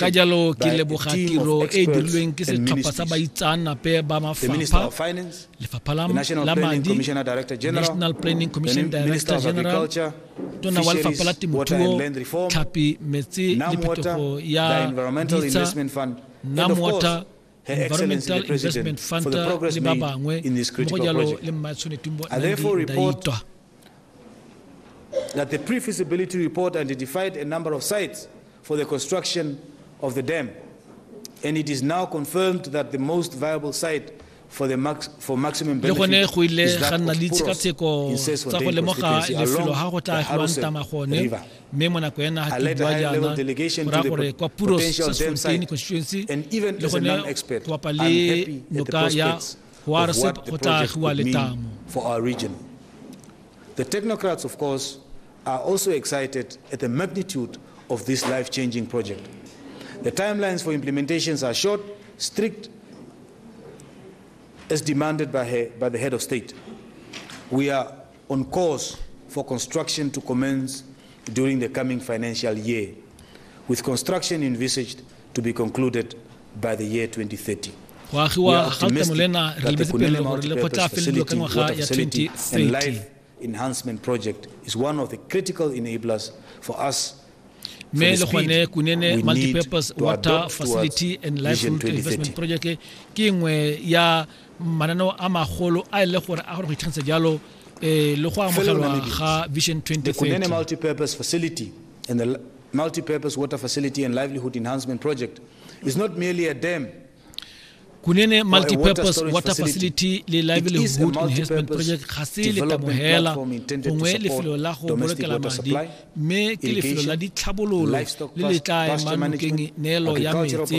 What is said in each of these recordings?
ka jalo ke leboga tiro e e dirilweng ke setlhopha sa baitsaanape ba mafapha lefapha la madi national planning commission director general tona wa lefapha la temothuo tlhapi metsi le phetogo ya ditsa nam water Environmental Investment Fund le ba bangwe mmogo jalo le Mmae Tshwanetumbo Nandi Ndaitwa that the pre-feasibility report identified a number of sites for the construction of the dam. And it is now confirmed that the most viable site for the max, for maximum benefit le gone go ile ga nna le ditshekatsheko tsa go lemoga lefelo ga go tla agiwang tama gone mme mo nako ya naga ke bua jaana go raya gore kwa puro sasfontein constituency le gone go bapa le noka ya hoarset go tla agiwa letamo The technocrats, of course, are also excited at the magnitude of this life-changing project. The timelines for implementations are short, strict, as demanded by, her, by the head of state. We are on course for construction to commence during the coming financial year, with construction envisaged to be concluded by the year 2030. go agiwa ga letamolena re lebetse pele gore le kgotla felelo ka ngwaga ya 2030 enhancement project is one of the critical enablers for us mme le gone kunene multipurpose water facility and life route investment project ke nngwe ya mananeo a magolo a e le gore a gore go itlhagisa jalo eh, le go amogelwa ga vision 2030 multi-purpose facility and the multi-purpose water facility and livelihood enhancement project is not merely a dam kunene multipurpose water facility le livelihood enhancement project ga se letabogela gongwe lefelo la go bolokela madi mme ke lefelo la ditlhabololo le le tla emang nokeng neelo ya metse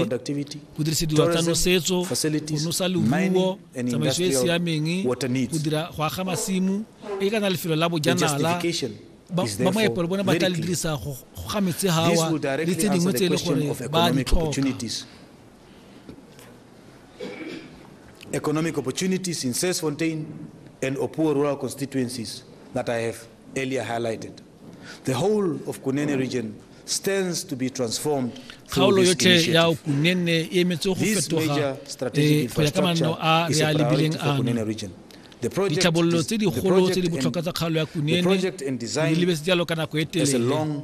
go dirisediwa tsa nosetso go nosa leruo tsamaiso e e siameng go dira go aga masimo e ka na lefelo la bojanala ba moepelo bone ba tla le dirisa go ga metse gawa le tse dingwe tse e le gore ba di tlhoka economic opportunities in Sesfontein and Opuwo rural constituencies that I have earlier highlighted. The whole of Kunene region stands to be transformed kgaolo yotlhe ya kunene e emetse go fetoga eh, go ya ka manno a re a lebileng ano ditlhabololo tse digolo tse di botlhokwa tsa kgaolo ya kunene di lebetse jalo ka nako e telele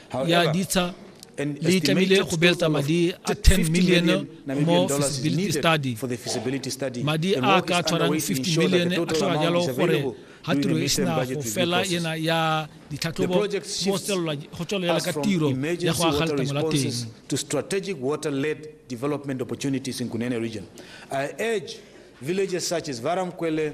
ya ditsha le tlamehile go beeletsa madi a 10 million mo feasibility study madi a ka tshwarang 50 million a tlhoka jalo gore ga tiro e sena go fela ena ya ditlhatlhobo go tswelela ka tiro ya go aga letamo la teng to strategic water led development opportunities in Kunene region i urge villages such as Varamkwele